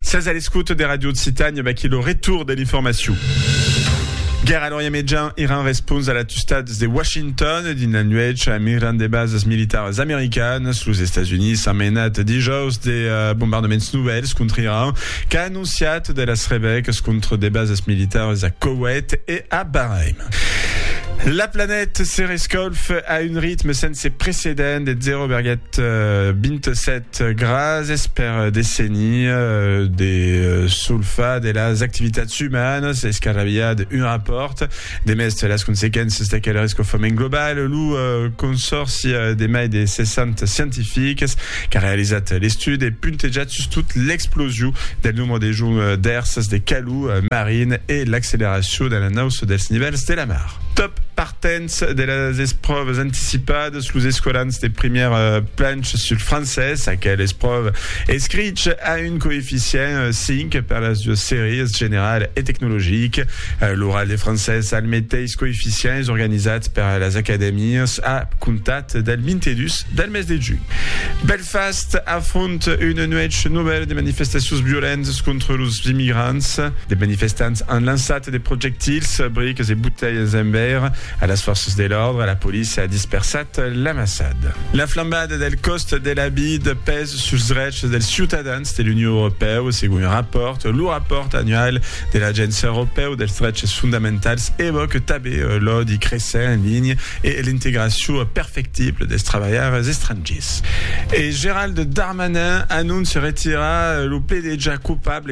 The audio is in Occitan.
Sas a l'escoute de Radio Occitània, vaquí lo retour de l'informacion. Guerra Lorient Medjan Iran respons a l'atustades de Washington dins la nuèch a migran de basas militaras americanas. Los Estats Units han menat dijòus de uh, bombardaments novèls contra Iran qu'a anonciat de las revèques contra de basas militaras a Koweït e a Bahrain. La planèta se rescolfe a un ritme sense precedent de 0,27 Gràcies per desenir de solfar de las activitats umanas escarrabilhar d'un rapòrt de mès las consequéncias d'aquel rescofament global. Lo consòrci de mai de 60 scientifics qu'a realizat l'estudi e puntejat sustot l'explosion del nombre de joncs d'èrsas de calor marin e l'acceleracion de l'anauça dels nivèls de la mar. Top! Dens de las espròvas anticipadas, los escolans de primièr planch sul francés, aquel espròva escrich a un coeficient 5 per las duas sèries, general e tecnologic. L'oral de francés al meteis coeficient es organizat per las acadèmias a comptat del 22 del mes de junh. Belfast afronta una nuèch novèla de manifestacions violentas contra los immigrants. De manifestants an lançat de projectils, briques e botelhas en veire a las fòrças de l'òrdre, la polícia a dispersat l'amassada. La flambada del còst de la vid pes suls drechs dels ciutadans de l'Union Europèu, segon un rapòrt. Lo rapòrt annual de l'Agéncia Europèu dels Dreches Fondamentals evòque tabé l'òdi cressent en linha e l'integracion perfectible dels trabalhaires estrangiers. E Gerald Darmanin anóncia retirar lo pledejar coupable